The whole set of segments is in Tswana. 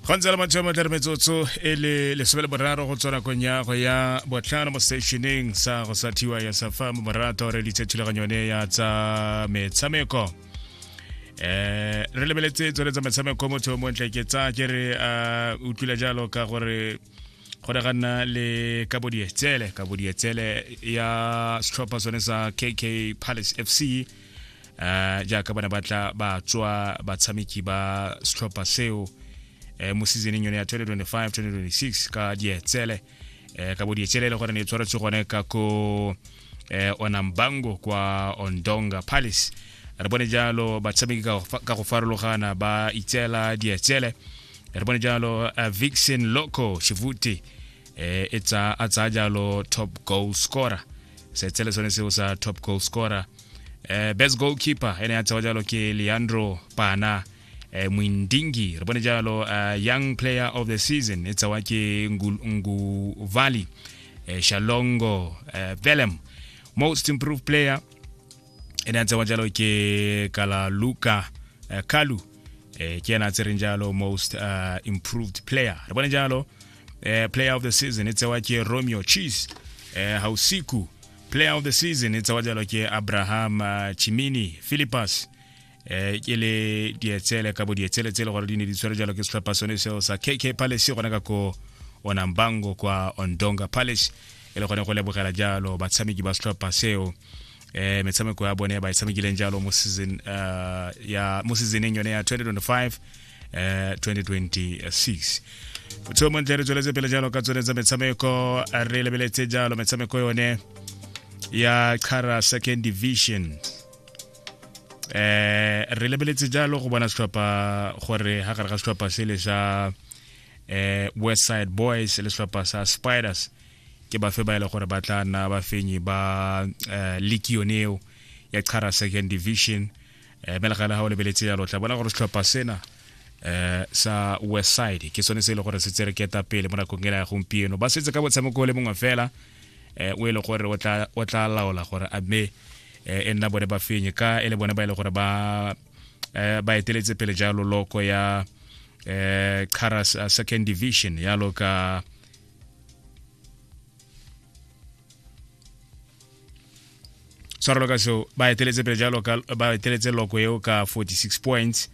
go ntse le matsheo matlhare metsotso e le lesome le boraro go tswa kong ya go ya botlhano mo seteisheneng sa go sa thiwa ya safa mo morato re ditse thulaganyo yone ya tsa metshameko um re lebeletse tsone tsa metshameko motho yo montle ke tsa ke re a utlwile jalo ka gore go ne ga nna le kabodietsele kabodietsele ya setlhopha sone sa kk palace f c um jaaka bana ba tla ba tswa batshameki ba setlhopha seo um mo seasoneng yone ya 2025-2026 ka dietsele um ka bodietsele e le gore ne e tshwaretswe gone ka ko um onambango kwa ondonga palace re bone jalo batshameki ka go farologana ba itseela dietsele re bone jalo uh, vixen loco shivute eh, e tsa a tsaya jalo top goal scorer setshele sone seo sa top goal scorer eh, best goalkeeper ene ya tsewa jalo ke leandro pana eh, mwindingi re bone jalo uh, young player of the season e tsewa ke Ngu- nguvali eh, shalongo eh, velem most improved player e ne a tsewa jalo ke kala luka uh, eh, kalu eh, ke ena a tsereng jalo most uh, improved player re bone jalo eh, player of the season e tsewa ke romeo cheese eh, hausiku player of the season e tsewa jalo ke abraham uh, chimini philippus eh ke le dietsele ka bo dietsele tse le gore di ne di tshwere jalo ke setlhopha sone seo sa kk palace gona ka ko onambango kwa ondonga palace e le gone go lebogela jalo batshameki ba setlhopha seo eh metshameko ya bone ba e tshamekileng jalo mo season uh, ya mo seasoneng yone ya 2025 eh 2026 so montle re tsweletse pele jalo ka tsone tsa metshameko re lebeletse jalo metshameko yone ya Kara Second Division eh re lebeletse jalo go bona setlhopha gore ha gare ga setlhopha se le sa eh west side boys le setlhopha sa spiders ke bafe ba ile gore ba tla nna bafenyi ba eh, league yone eo ya chara second division eh me le gale ha o lebeletse jalo tla bona gore setlhopha sena eh sa west side ke sone se ile gore se tsereketa pele mo nakong e ya gompieno ba setse ka botshameko le mongwe fela eh, o e le gore o tla laola gore a mme eh, e nna bone ba fenye ka e le bone ba e le gore ba eh, ba eteletse pele jalo loko ya eh, Karas uh, second division ya loka tshwarelo ka seo ba eteletse pele jalo ba eteletse loko eo ka 46 points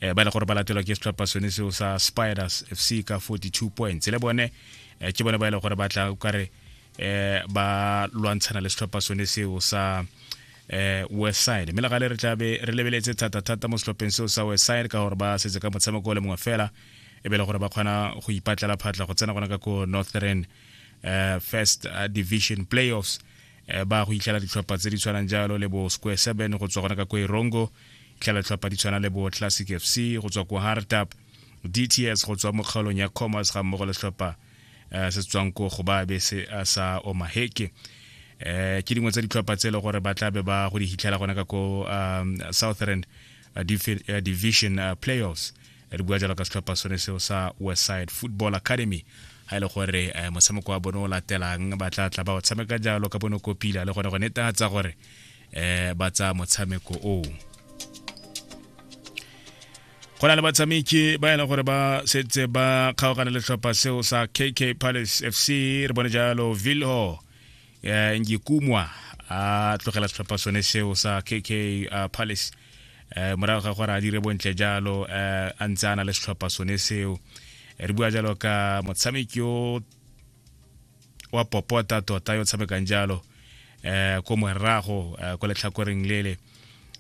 eh, ba le gore ba latelwa ke setlhopha sone seo sa spiders fc ka 42 points le bone eh, ke bone ba e le gore ba tla kare eh, ba lwantshana le setlhopha sone seo sa eh, west side mme le gale re tlabe re lebeletse thata-thata mo setlhopheng seo sa west side ka gore ba setse ka motshameko o le mongwe fela e be le gore ba kgona go ipatlela phatla go tsena gona ka ko northern uh, first uh, division playoffs eh, ba go itlhela ditlhopha tse di tshwanang jalo le bo square seven go tswa gona ka kwa erongo itlhela ditlhopha di tshwana le bo classic fc go tswa ko hardtap dts go tswa mo kgaolong ya commerce ga mmogo le setlhopha eh, se tswang ko go ba be se eh, sa omaheke eh ke dingwe tsa ditlhopha tse e le gore ba tla be ba go di hitlhela gona ka ko um, southern uh, uh, division uh, playoffs re bua jalo ka setlhopha sone seo sa westside football academy ga e le gore um eh, motshameko wa bone o latelang ba tla tla ba o tshameka jalo ka bone kopila le gone go netatsa gore um ba tsaya motshameko oo go na le batshameki ba e leng gore ba setse ba kgaogana le tlhopha seo sa kk palace fc re bone jalo vilho um ngikumwa a tlogela setlhopha sone seo sa kk uh, palace um morago ga gore a dire bontle jalo um a ntse a na le setlhopha sone seo re bua jalo ka motshameki yo wa popota tota yo tshamekang jalo eh ko morago eh, ko letlhakoreng lele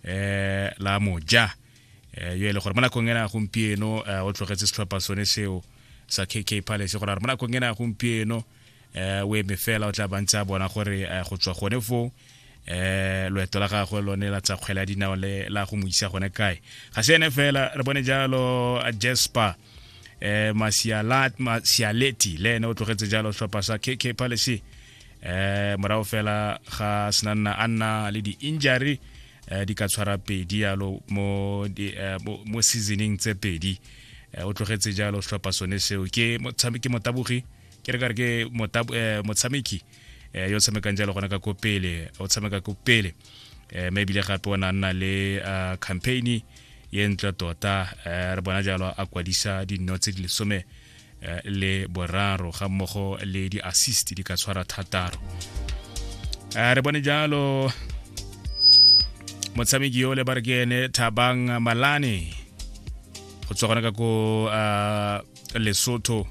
eh la moja eh yo e le gore mo nakong ena gompieno eh, o tlogetse setlhopha sone seo sa KK Palace gore mo nakong ena gompieno um o eme fela o tla bantse a bona gore eh, go tswa gone foo um eh, loeto la gagwe lone la tsa kgwele ya dinao le la go mo isa gone kae ga se ene fela re bone jalo jasper eh masialat masialeti le ene o tlogetse jalo tlhopha sa KK Palace eh morago fela ga senanna a nna le di-injury eh, di ka tshwara pedi yalo mo, di, eh, mo, mo seasoning tse pedi eh, o tlogetse jalo tlhopha sone seo ke motabogi ke re kare ke eh, motshameki eh, yo tshamekang jalo gona ka ko pele o tshameka ko pele eh, mme ebile gape o ne a nna le ah, campaign ye ntle tota re bona jalo a kwadisa dinno tse di lesome le boraro ga mmogo le di-assist di ka tshwara thataro re bone jalo motshameki yo le ba re ke ene thabang malane go tswa gona ka ko lesotho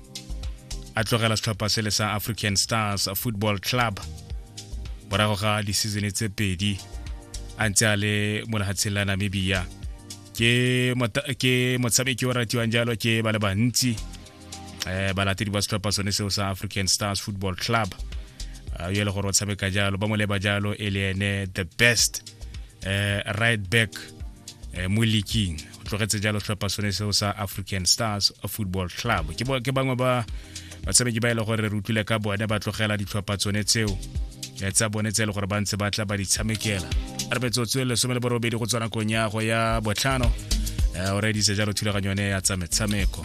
a tlogela setlhopha se le sa african stars football club morago ga disizone tse pedi a ntse a le mo lehatsheng la namibia ke motshameki o ratiwang jalo ke ba le bantsi um balatedi ba setlhopha sone seo sa african stars football club Ah, yo e le gore o tshameka jalo ba mo leba jalo e le ene the best eh, right back eh, mo leaking tlogetse jalo tlhopha sone seo sa african stars football club ke bangwe ba batshameki ba e le gore re utlwile ka bone ba tlogela ditlhopha tsone tseo eh, tsa bone tse e le gore ba ntse ba tla ba di tshamekela re betsotswe lesome le borobedi go tswana kong ya go ya botlhano eh, o redise jalo thulaganyo yone ya tsa metshameko